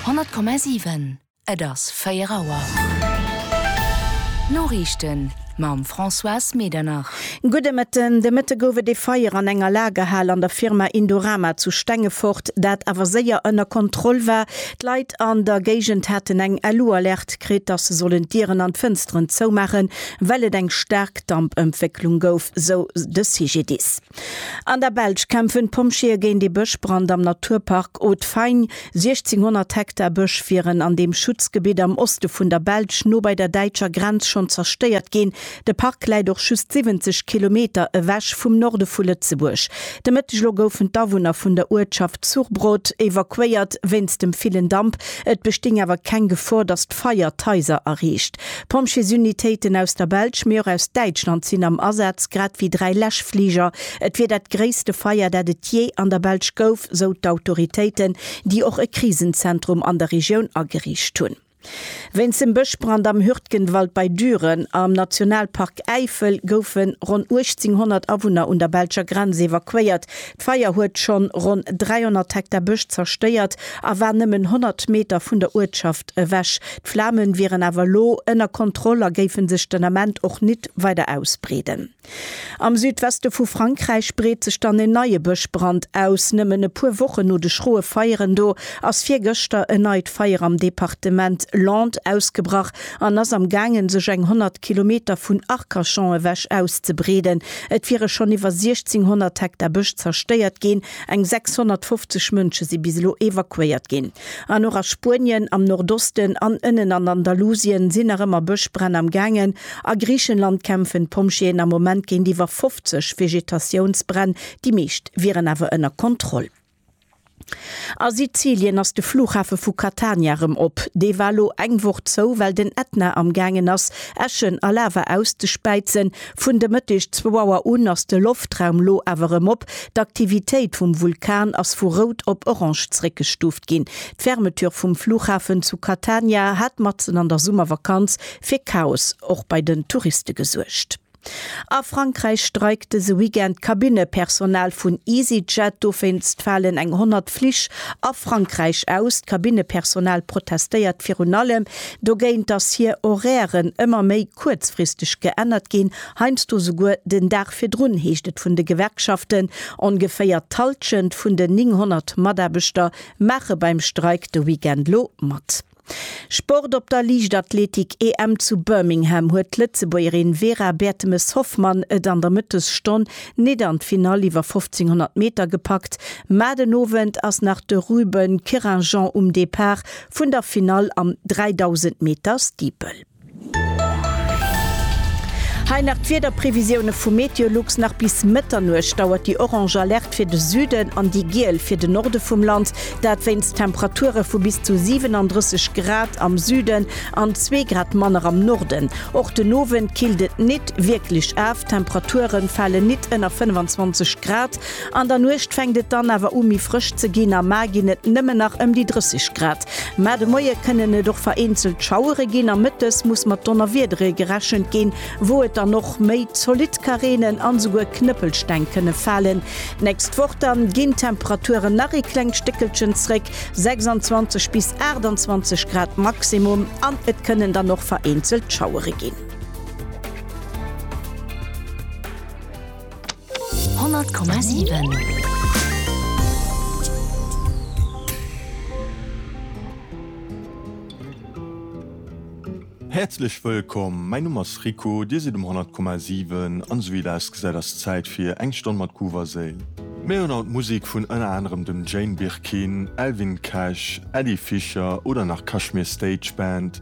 100,7 Et ass 4 Auer. D'Noriichten mam Françoise Medernach. Gudde Mëtten. De Mëtte gouf et ee Feier an enger Lagerhal an der Firma Indorama zu Stengefort, dat awer séier ënner Kontroll war. D'Leit an der Géigend haten eng LU-Alerte kritt, dass se sollen d'Dieren an d'Fënsteren zoumaachen, well et eng staark Dampëntwécklung gouf, sou de CGDIS. An der Belsch kämpfen d'Pompjeeë géint ee Bëschbrand am Naturpark Haute-Fagne. 1.600 Hektar Bësch wieren an deem Schutzgebitt am Oste vun der Belsch, no bei der däitscher Grenz, schonn zerstéiert ginn. De Park läit och just 70 Kilometer ewech vum Norde vu Lëtzebuerg. De Mëtteg elo goufen d'Awunner vun der Uertschaft Zurbrod evakuéiert wéinst dem villen Damp. Et bestinn awer keng Gefor, datt d'Feier d'Haiser erreecht. Pompjeesunitéiten aus der Belsch, mee och aus Däitschland sinn am Asaz, grad ewéi dräi Läschfliger. Et wier dat gréisste Feier, dat et jee an der Belsch gouf, sou d'Autoritéiten, déi och e Krisenzentrum an der Regioun ageriicht hunn. Wéinst dem Bëschbrand am Hürtgenwald bei Düren am Nationalpark Äifel goufe ronn 1.800 Awunner un der belscher Grenz evakuéiert. D'Feier huet schonn ronn 300 Hektar Bësch zerstéiert a war nëmmen 100 Meter vun der Uertschaft Ewech. D'Flamen wieren awer lo ënner Kontroll a géifen sech den Ament och nit weider ausbreeden. Am Südweste vu Frankräich breet sech dann en neie Bëschbrand aus. Nëmmen e puer Wochen no de schroe Feieren do ass virgëschter en neit Feier am Departement Landes ausgebrach an ass am gaangen sech eng 100 Kilometer vun Arcachon ewech auszebreeden. Et wiere schonn iwwer 1600 Hektar Bësch zerstéiert ginn, eng 650 Mënsche si bis elo evakuéiert ginn. An och a Spuenien, am Nordosten an ënnen an Andalusien sinn nach ëmmer Bëschbränn am gaangen. A Griichenland kämpfen d'Pompjeeën am Moment géint iwwer 50 Vegetatiounsbränn, déi meescht wieren awer ënner Kontroll. A Sizilien ass de Flughafe vu Catania erëm op. Dee war elo eng Woch zou, well den Ätna am gaangen ass, Äschen a Lava auszespäizen. Vun de Mëtteg zwou Auer un ass de Loftraum lo awer erëm op. D'Aktivitéit vum Vulkan ass vu rout op orange zréckgestuuft ginn. D'Fermeture vum Flughafen zu Catania hat matzen an der Summervakanz fir Chaos och bei den Touriste gesuergt. A Frankräich streikt dëse Weekend d'Kabinnepersonal vun Easyjet. Dowéinst falen eng 100 Flich a Frankräich aus. D'Kabinnepersonal protestéiert virun allem Dogéint dass hir Horairen ëmmer méi kuerzfristeg geännert ginn, heiansdo souguer den Dag virdrun, heescht et vun de Gewerkschaften. Ongeféier d'Halschent vun den 900 Mataarbechter maache beim Streik de Weekend lo mat. Sport Op der Liichtathletik-EM zu Birmingham huet d'Lëtzebuergerin Vera Bertemes-Hoffmann et an der Mëttesstonn nit an d'Finall iwwer 1500 Meter gepackt, ma den Owend ass nach de Ruben Querinjean um Depart Vun der Finall am 3000 Meter Steeple. Hei nach d'Wiederprevisioune vu Meteolux, Nach bis Mëtternuecht dauert déi orange Alerte fir de Süden an déi giel fir de Norde vum Land, dat wéinst Temperature vu bis zu 37 Grad am Süden an zwee Grad manner am Norden. Och den Owend killt et nit wierklech af, Temperature fale nit ënner 25 Grad. An der Nuecht fänkt et dann awer u méi frësch ze ginn, am Mar ginn et nëmmen nach ëm déi 30 Grad. Mä de Moie kënnen et och vereenzelt Schauere ginn a mëttes muss mat Donnerwiedere gerechent ginn, wou et dann och méi zolidd ka reenen an esouguer Knëppelsteng kënne falen. D'nächst Woch dann ginn d'Temperaturen nach ee klengt Stéckelchen zréck, 26 bis 28 Grad Maximum, an et kënnen dann och vereenzelt Schauere ginn. Häerzlech wëllkomm, mäin Numm ass Rico, dir sidd um 100,7 an esou wéi et ausgesäit ass Zäit fir eng Stonn mat Groove a Séil. Mir hunn haut Musik vun ënner anerem dem Jane Birkin, Elvin Cash, Ady Fischer oder nach Kashmir Stage Band.